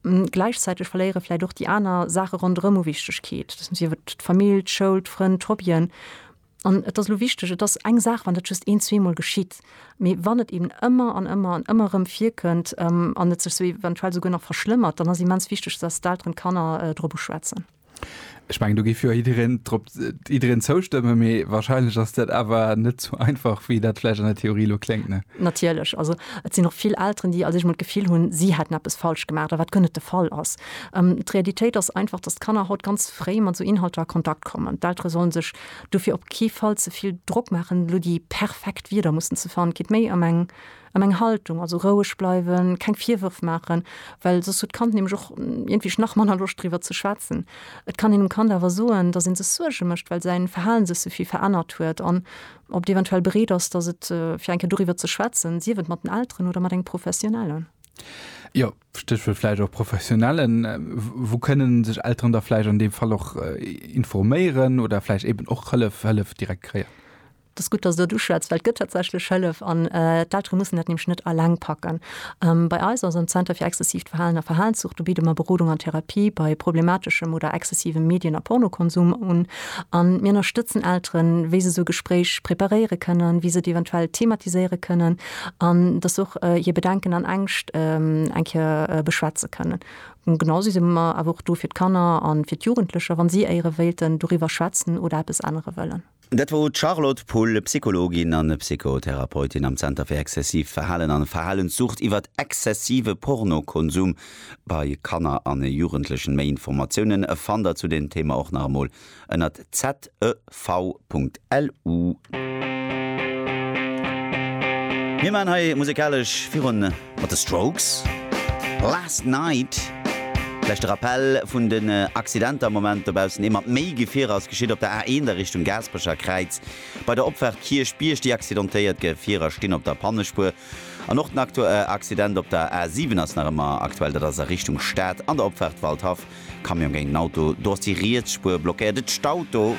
Gläichzäiteg verléiere vläicht och déi aner Saache ronderëm u Wichtegkeet, sief et d'Famill, d'Schoul, d'Frënn, d'Hobbyen. An et ass elo wichteg, et ass eng Saach, wann dat just een, zweemol geschitt, mee wann et eben ëmmer an ëmmer an ëmmer erëm virkënnt an et sech esou eventuell esouguer nach verschlëmmert, dann ass immens wichteg, dass d'Elteren d'Kanner drop uschwätzen. Ech meng do géif jo jiddereen drop jiddereen zoustëmme mee wahrscheinlech ass dat awer net sou einfach wéi dat vläicht an der Theorie elo kléngt ne? Natierlech, also et sinn och vill Elteren déi also sech mol d'Gefill hunn si hätten eppes falsch gemaach, wat guer net de Fall ass. D'Realitéit ass einfach datt d'Kanner haut ganz fréi mat esou Inhalter a Kontakt kommen. D'Eltere sollen sech dofir op kee Fall ze vill Drock maachen elo déi perfekt Wierder mussen ze fannen. Geet méi ëm eng An eng Haltung, also roueg bleiwen, keng Virwërf maachen, well soss huet d'Kand nämlech och iergendwéi nach manner Loscht driwwer ze schwätzen. Et kann een dem Kand awer soen, dass ee sech Suerge mécht, well säin Verhalen sech souvill verännert huet an ob et eventuell bereet ass, dass et fir eng Kéier doriwwer ze schwätzen, sief et mat den Elteren oder mat engem Professionellen. Jo, Stéchwuert vläicht och Professionellen. Wou kënnen sech Elteren da vläicht an deem Fall och informéieren oder vläicht eeben och Hëllef, Hëllef direkt kréien? Et ass gutt, dass s de dat uschwätz, well et gëtt tatsächlech Hëllef an d'Eltere mussen dat nämlech net alleng packen. Bei eis, also am Zenter fir exzessiivt Verhalen a Verhalenszucht, do bidde mer Berodung an Therapie bei problemateschem oder exzessivem Medien a Pornokonsum un. A mir ënnerstëtzen Elteren, wéi se esou e Gespréich preparéiere kënnen, wéi se et eventuell thematiséiere kënnen an dass se och hir Bedenken an Ängscht eng Kéier beschwätze kënnen. Genausou si mer awer och do fir d'Kanner a fir d'Jugendlecher, wa si éiere wéilten doriwwer schwätzen oder eppes ännere wëllen. Dat wor d'Charlotte Pull, Psychologin an Psychotherapeutin am Zenter fir exzessiivt Verhalen an Verhalenssucht, iwwer exzessive Pornokonsum bei Kanner an Jugendlechen. Méi Informatiounen fannt der zu deem Thema och nach emol ënnert zev.lu. Mir maan hei musekalesch virun. Mat The Strokes, Last Night. Vläicht de Rappell vun den Accidenter am Moment dobaussen, Ee mat méi Gefierer ass geschitt op der A1 a Richtung Gaasperecher Kräiz bei der Opfaart Kierchbierg. Déi accidentéiert Gefierer stinn op der Pannespuer. An och den Accident op der A7 ass nach ëmmer aktuell, dat ass a Richtung Stad an der Opfaart Waldhaff. Camion géint en Auto, do ass déi riets Spuer blockéiert. Et staut do.